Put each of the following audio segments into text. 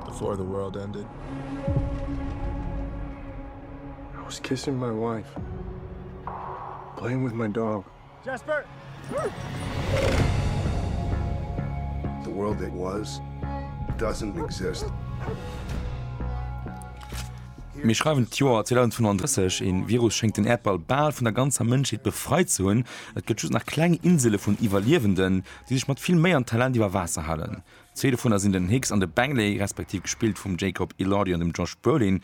Before the world ended. I was kissing my wife. Playing with my dog. Jasper! The world that was doesn't exist. Mir schreiwen d'Joer 2035, een Virus schéngt den Äerdball bal vun der ganzer Mënschheet befreit ze hunn. Et gëtt just nach kleng Insele vun Iwwerliewenden. déi sech mat vill Méi an Talent iwwer Waasser halen. Zwee dovunner sinn den Hicks an de Bangley, respektiv gespillt vum Jacob Elordi an dem Josh Brolin.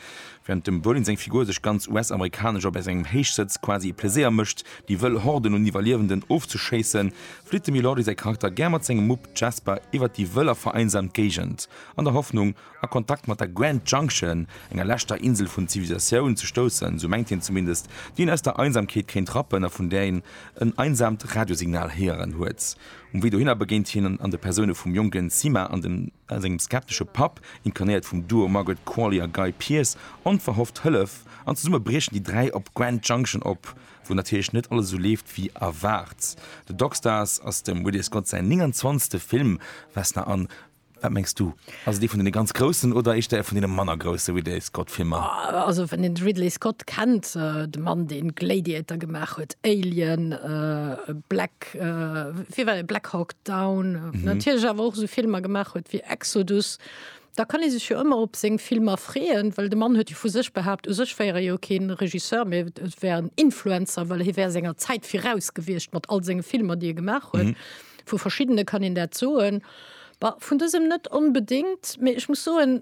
Wärend dem Brolin seng Figur sech ganz US-amerikanesch a bei sengem Héichsëtz quasi e Pleséier mécht, déi wëll Horden un Iwwerliewenden ofzeschéissen, flitt dem Elordi säi Charakter gär mat sengem Mupp Jasper iwwert déi wëll a vereinsamt Géigend, an der Hoffnung, a Kontakt mat der Grand Junction, enger leschter Insel vun Zivilisatioun, ze stoussen, sou mengt hien zumindest, déi een aus der Einsamkeet kéint rappen a vun där een en einsaamt Radiosignal héieren huet. Um Wee dohinner begéint hien an de Persoune vum jonken Sima a sengem skeptesche Papp, inkarnéiert vum Duo Margaret Qualley a Guy Pearce, onverhofft Hëllef, an zesumme briechen déi dräi op Grand Junction op, wou natierlech net alles esou leeft wéi erwaart. The Dockstars ass dem Ridley Scott säin 29. Film, Vesna an. Wat mengs du? Ass et ee vun deene ganz Groussen oder éischter ee vun deene manner grousse Ridley Scott Filmer? Also wann een de Ridley Scott kennt, de Mann deen Gladiator gemaach huet, Alien, Black, wéi war deen, Black Hawk Down, natierlech awer och esou Filmer gemaach huet wéi Exodus, da kann ee sech jo ëmmer op seng Filmer freeën, well de Mann huet jo vu sech behaapt, u sech wär e jo keen Regisseur, mee e wär en Influencer, well hie wär senger Zäit viraus gewiescht mat all senge Filmer déi e gemaach huet. Vu verschiddene kann een dat soen. Bah, vun dësem net onbedéngt, mee ech muss soen,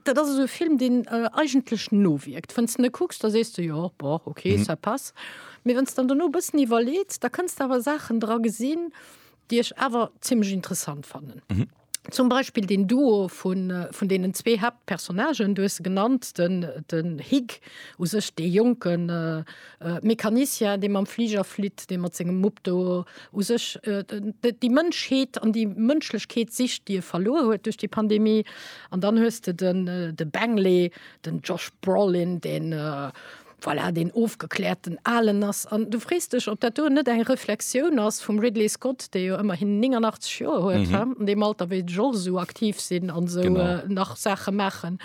dat ass esou e Film, deen eigentlech nowierkt. Wann s de en kucks, da sees de, Jo, bon, ok, ça passe. Mee wann s de dann dono e bëssen iwwerleets, da kënns de awer Saachen dra gesinn, déi ech awer zimmlech interessant fannen. Zum Beispill deen Duo vun, vun deenen zwee Haaptpersonnagen, du hues se genannt, den, den Hig u sech, dee jonken, Mecanicien, dee mam Fliger flitt, dee mat sengem Mupp do u sech déi Mënschheet an déi Mënschlechkeet sicht, déi e verluer huet duerch déi Pandemie. An dann hues de den de Bengele, den Josh Brolin, deen voilà, deen ofgekläerten Alen ass. An du frees dech, ob dat do net eng Reflexioun ass vum Ridley Scott, dee jo ëmmerhin 89 Joer huet, an deem Alter wéi de Josh esou aktiv sinn an esou nach Saache maachen.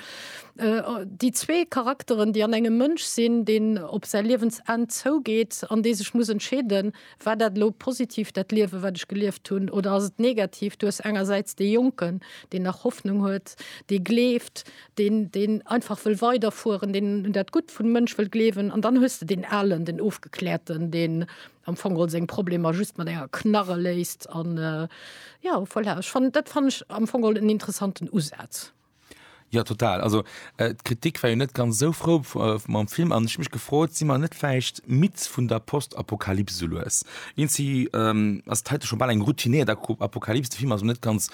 Déi zwee Charakteren, déi an engem Mënsch sinn, deen op säi Liewensenn zougeet an dee sech muss entscheeden, War dat elo positiv, dat Liewe wat ech gelieft hunn, oder ass et negativ? Du hues engersäits dee Jonken, deen nach Hoffnung huet, dee gleeft, deen deen einfach wëll weiderfueren, deen un dat Gutt vum Mënsch wëll gleewen, an dann hues de deen Alen, den Ofgekläerten, deen am Fong geholl seng Problemer just mat enger Knarre léist. An jo, voilà, ech fannen, dat fannen ech am Fong geholl en interessanten Usaz. Jo total, also d'Kritik war jo net ganz esou frou mam Film an ech hu mech gefrot, si mer net vläicht midd vun der Postapokalyps esou lues? Eenzi ass et heite scho bal eng routinéiert Apokalyps, de Film ass och net ganz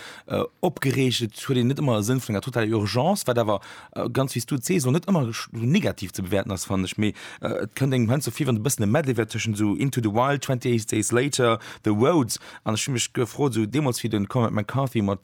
opgereegt, et huet een net ëmmer e Sënn vun enger totaler Urgence, wat awer ganz wéi s du et sees och net ëmmer esou negativ ze bewäerten ass fannen ech, mee et kënnt engem heiansdo vir wann et e bëssen e Medley wär tëschent esou Into the Wild, 28 Days Later, The Road an ech hu mech gefrot esou deemools wéi de Cormac McCarthy mat